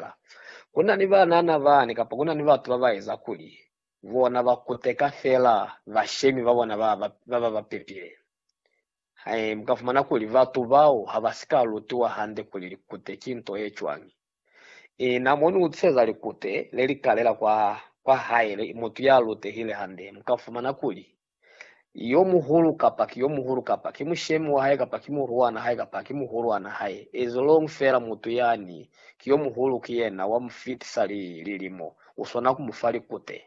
Ka ku na ni banana bani kapa ku na ni batu ba ba eza kuli bona ba kuteka fela bashemi ba bona ba ba ba pepile. He, mu ka fumana kuli batu bao ha ba si ka lutiwa hande kuli likute ki nto ye cwañi. Ina mo ni utiseza likute le li kalela kwa, kwa haele i mutu ya lutehile hande, mu ka fumana kuli Yomuhulu kapa ki yomuhulu kapa ki mushemi wahae kapa ki muruana hae kapa ki muhuluana hae, ezolongi feela mutu yani ki yomuhulu ki yena wa mufitisa li lilimo, uswana kumufa likute.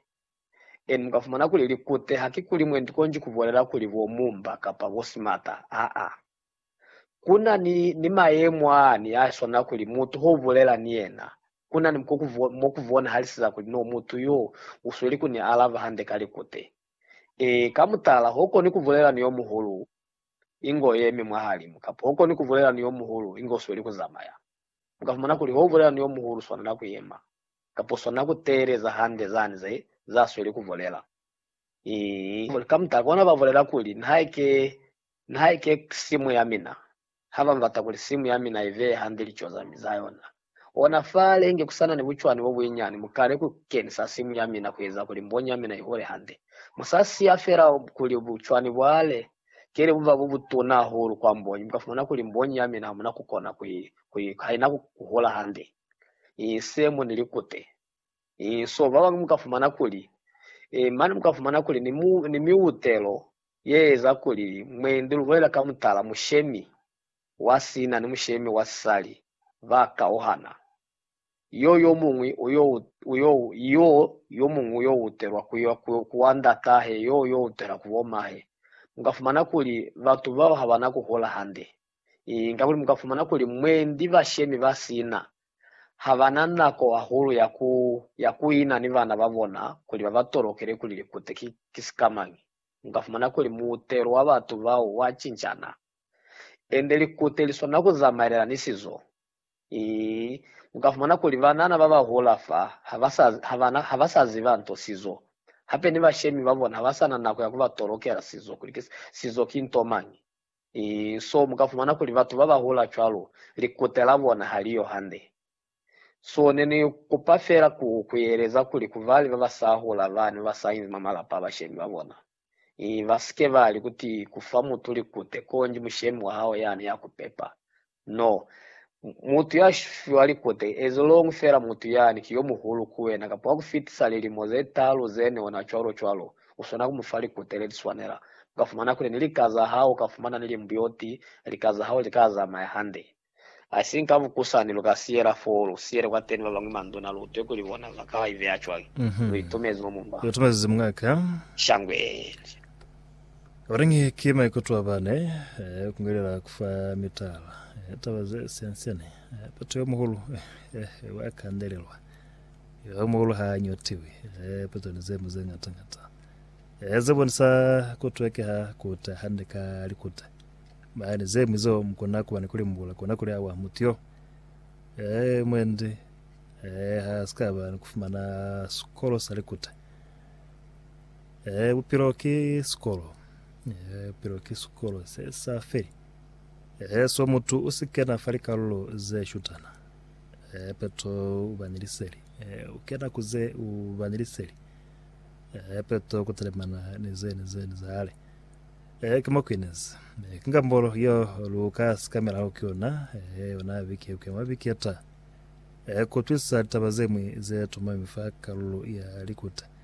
Eni mukafumana kuli likute haki kuli mwendi konji kubulela kuli bo mumba kapa bo simata, aa. Kuna ni, ni mayemo aani aaswana kuli mutu hobulela ni yena, kuna ni mo kubonahaliseza kuli no mutu yo usweli kuni alaba hande ka likute. Ee, ka mutala, hokoni kubulela ni yomuhulu ingo yemi mwahalimu, kamba hokoni kubulela ni yomuhulu inge usweli kuzamaya. Mukafumana kuli houbulela ni yomuhulu uswanela kuyema, kamba uswanela kuteeleza hande zani ze, zeasweli kubulela. Ii, ka mutala, kona babulela kuli, Nihaike, nihaike simu yamina, ha ba mbata kuli simu ya mina i veye hande lico za mi za yona. Ona fale inge ku sa na ni bucwani bo buinyani, mu kale ku kenisa simu ya mina ku eza kuli mbonyi ya mina i hole hande. Mu sa siya fela kuli bucwani bwale kele bu ba bo butuna hahulu kwa mbonyi, mu ka fumana kuli mbonyi ya mina ha mu na ku kona ku i, ha i na ku hola hande, i se mu ni likute. Eh, so babañwi mukafumana kuli, eh, mane mukafumana kuli ni, mu, ni miutelo yeeza kuli mwendi lubolela ka mutala mushemi wa sina ni mushemi wa sisali ba kauhana. Yo yomuñwi uyo, uyo, yo yomuñwi uyo utelwa ku, ku, ku wa ndatahe, yo yo utela ku bomahe. Mukafumana kuli batu bao habana kuhula hande. Kakuli mu ka fumana kuli mwendi bashemi ba sina ha ba na nako hahulu ya ku ya ku ina ni bana ba bona kuli ba ba tolokele kuli likute ki ki sikamañi. Mu ka fumana kuli muutelo wa batu bao wa cincana. Ende likute li swanela ku zamaelela ni sizo. Ii, Mu ka fumana kuli banana ba ba hula fa ha ba sa ha ba na ha ba sa ziba nto sizo. Hape ni bashemi ba bona ha ba sa na nako ya ku ba tolokela sizo kuli ki sizo ki nto mañi. So mu ka fumana kuli batu ba ba hula cwalo, likute la bona ha li yo hande. So ne ni kupa fela ku kueleza kuli ku bali ba ba sa hula ba ne ba sa inzi mwa malapa a bashemi ba bona, ba si ke ba li kuti ku fa mutu likute konji mushemi wa hao ya ne ya ku pepa, No. Mutu ya fiwa likute ezo loñwi fela mutu yani ki yo muhulu ku wena kapa wa ku fitisa lilimo ze talu ze ne ona cwalo-cwalo, u swana ku mu fa likute le li swanela. U ka fumana kuli ni lika za hao u ka fumana ni li mbuyoti, lika za hao li ka zamaya hande. Haisiñi ka mukusani lu ka siyela foo, lu siyele kwateni ba bañwi manduna, lu utwe kuli bona ba ka iveya cwañi. Lu itumezi mwa mumba. Lu itumezi mwa ka. Shangweli. Orange ki maikuto a bane eh, ku ngelela ku fa mitala eh, taba ze siansiane eh, peto yo muhulu eh, eh, wa kandelelwa yo muhulu ha nyotiwi eh, peto ni zemu ze ngata ngata eh, ze bonisa ku twekeha kuta hande ka likuta mani zemu zo mukona kuba ni kulimbula kona kuli awa mutu yo eh, mwendi eh, ha sikaba ni kufumana sikolo sa likuta Ee, bupilo ki sikolo. Ee, bupilo ki sikolo se sa feli. Ee, so mutu u si kena fa likalulo ze shutana. Ee, peto u ba ni liseli. Ee, u kena ku ze u ba ni liseli. Ee, peto ku telemana ni ze ni ze ni zale. Ee, ki mo ku inezi. Ee, ki ngambolo yo lu ka sikamelaho ki yona, ee, yona biki ku ya mwa biki ye ta. Ee, ku utwisisa litaba ze ñwi ze tumami fa kalulo ya likuta.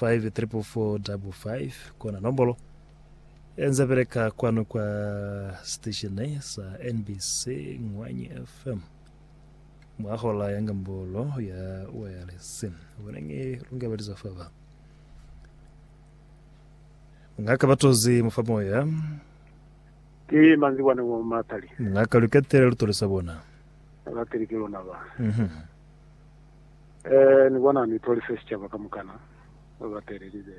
5445 kona nombolo enza beleka kwanu kwa siteshene sa NBC Ngwanyi FM mwa hola ya ngambolo ya wayalesi bonenge lungabaliza faba mngaka batozi mufa moya Ke manzi bwana wa matali. Mngaka luketele lutolisa bona. Alateli ke lona ba. Mhm. Mm Ee, ni kona ni tolise sicaba kamukana, ba ba telelize.